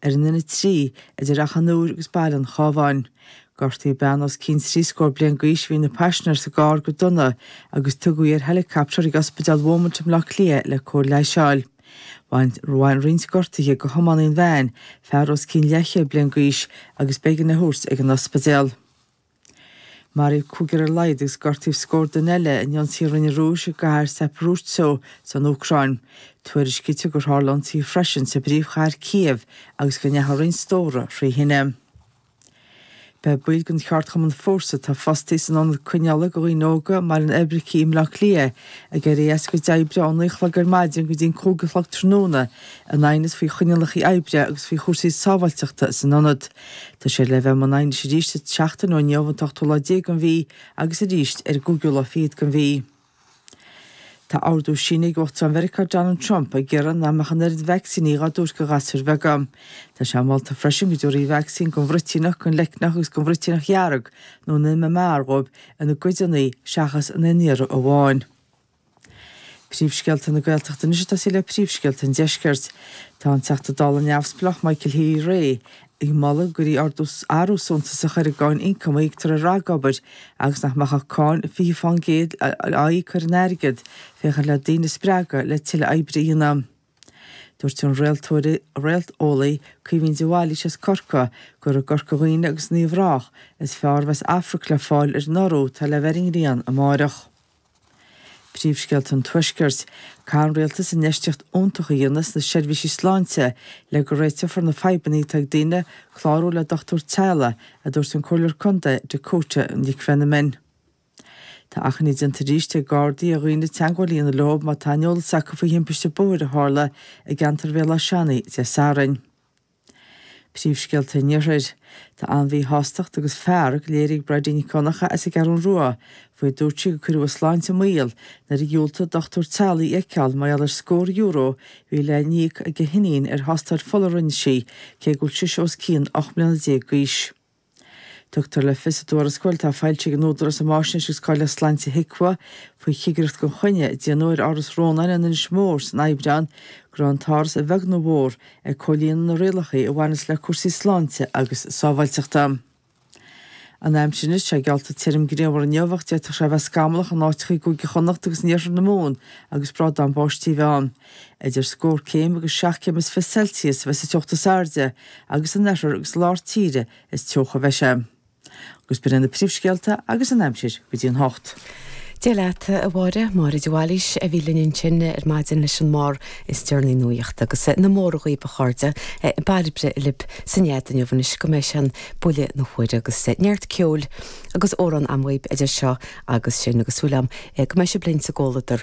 Ar an N3 idir Achadh an Iúir agus Baile an Chábháin, gortaíodh bean os cionn trí scór bliain d'aois a bhí ina paisinéir sa gcarr go dona agus tugadh í ar heileacaptar chuig Ospidéal Beaumont i mBleá Cliath le cóir leighis a fháil. Bhain roinnt gortaithe go thiománaí an veain, fear os cionn leathchéad bliain d'aois, agus b'éigean é a thabhairt ag an ospidéal. Maraíodh cúigear ar a laghad agus gortaíodh scór duine eile in ionsaí a rinne an Rúis i gcathair Zaporizhzhia san Úcráin. Tuairiscítear gur tharla ionsaithe freisin sa bpríomhchathair Kyiv agus go ndeachaigh roinnt stóra thrí thine. Beidh baill den cheardchumann Forsa atá fostaithe san ionad coinneála do dhaoine óga i mBaile an Oibricigh i mBleá Cliath ag éirí as a gcuid oibre ón naoi a chlog ar maidin go dtí an cúig a chlog tráthnóna in aighneas faoi choinníollacha oibre agus faoi chúrsaí sábháilteachta san ionad. Tá siad le bheith i mbun aighnis arís seachtain ó inniu, an t-ochtú lá déag den mhí, agus arís ar an gcúigiú lá fichead den mhí. Tá ordú sínithe ag Uachtarán Mheiriceá Donald Trump ag iarraidh nach mbeadh an oiread vacsaíní dhá dtabhairt do ghasúir bheaga. Tá sé molta freisin go dtabharfaí vacsaín don bhruitíneach, don leicneach agus don bhruitíneach dhearg nó an MMR dhóibh ina gcodanna seachas in aon iarraidh amháin. Príomhscéalta na Gaeltachta anois ag tosaí le príomhscéalta an deiscirt. Tá an Teachta Dála neamhspleách Michael Healy-Rae ag moladh go ndéanfaí athrú suntasach ar an gcáin ioncaim a íoctar ar ragobair agus nach mbeadh ach cáin 20 fán gcéad á íoc ar an airgead féachaint le daoine a spreagadh le tuilleadh oibre a dhéanamh. Dúirt an réalteolaí Caoimhín de Bhailís as Corcaigh gur i gCorca Dhuibhne agus in Uíbh Ráthach is fearr a bheas amharc le fáil ar an urú atá le bheith ar an ngrian amárach. Príomhscéalta an Tuaiscirt. Caithfidh an Rialtas infheistíocht fhiúntach a dhéanamh sna seirbhísí sláinte le go réiteofar na fadhbanna atá ag daoine ag clárú le dochtúir teaghlaigh, a dúirt an Comhairleoir Contae Dakota Nic Mheanman. Tá achainí déanta arís ag Gardaí ar dhaoine teagmháil a dhéanamh leo má tá aon eolas acu faoi thimpiste bóthair a tharla i gceantar Bhéal Átha Seanaidh Dé Sathairn. Príomhscéalta an Iarthair. Tá an-mhíshástacht agus fearg léirithe ag Bridie Nic Dhonncha as an gCeathrú Rua faoi go ndúirt sí gur cuireadh a sláinte i mbaol nuair a dhiúltaigh dochtúir teaghlaigh í a fheiceáil mar gheall ar scór euro a bhí le n-íoc ag a hiníon ar thástáil fola a rinne sí cé go bhfuil sise os cionn 18 mbliana d'aois. Tugtar le fios i dtuarascáil atá foilsithe ag an Údarás um Fháisnéis agus Cáilíocht Sláinte, HIQA, faoi chigireacht gan choinne a déanadh ar Áras Rónáin in Inis Mór san Aibreán go raibh an t-áras, a bheag nó a mhór, ag comhlíonadh na rialacha a bhaineas le cúrsaí sláinte agus sábháilteachta. An aimsir anois, tá sé geallta tirim grianmhar inniu ach d'fhéadfadh sé a bheith scamallach in áiteacha i gCúige Chonnacht agus in iarthar na Mumhan agus brádán báistí a bheith ann. Idir scór céim agus seacht gcéim is fiche Celsius a bheidh sa teocht is airde agus in oirthear agus lár tíre is teocha a bheidh sé. Agus b'in na príomhscéalta agus an aimsir go dtí an hocht. Dia leat, a Mháire. Máire de Bhailís a bhí linn ansin ar maidin leis an mbarr is deireanaí nuachta agus na mora dhaoibh a chairde, Bairbre libh sa nead inniu anois go mbeidh sé ar bhuille na huaire agus neart ceoil agus amhrán agam dhaoibh idir seo agus sin agus súil am go mbeidh sibh linn sa gcomhluadar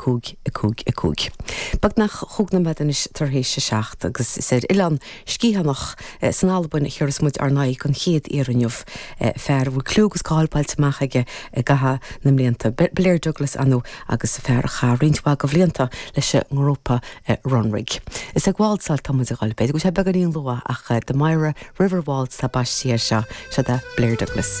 5, 5, 5. Beagnach cúig nóiméad anois tar éis a seacht, agus is ar an Oileán Sgiathanach san Albain a thabharfas muid ár n-aghaidh an chéad iarraidh inniu, fear a bhfuil clú agus cáil bainte amach aige i gcaitheamh na mblianta, Blair Douglas ann, agus fear a chaith roinnt mhaith de bhlianta leis an ngrúpa Runrig. Is ag wáltsáil atá muid a dhul. B'fhéidir go bhfuil sé beagáinín luath, ach The Mira River Waltz atá baiste air seo. Seo é Blair Douglas.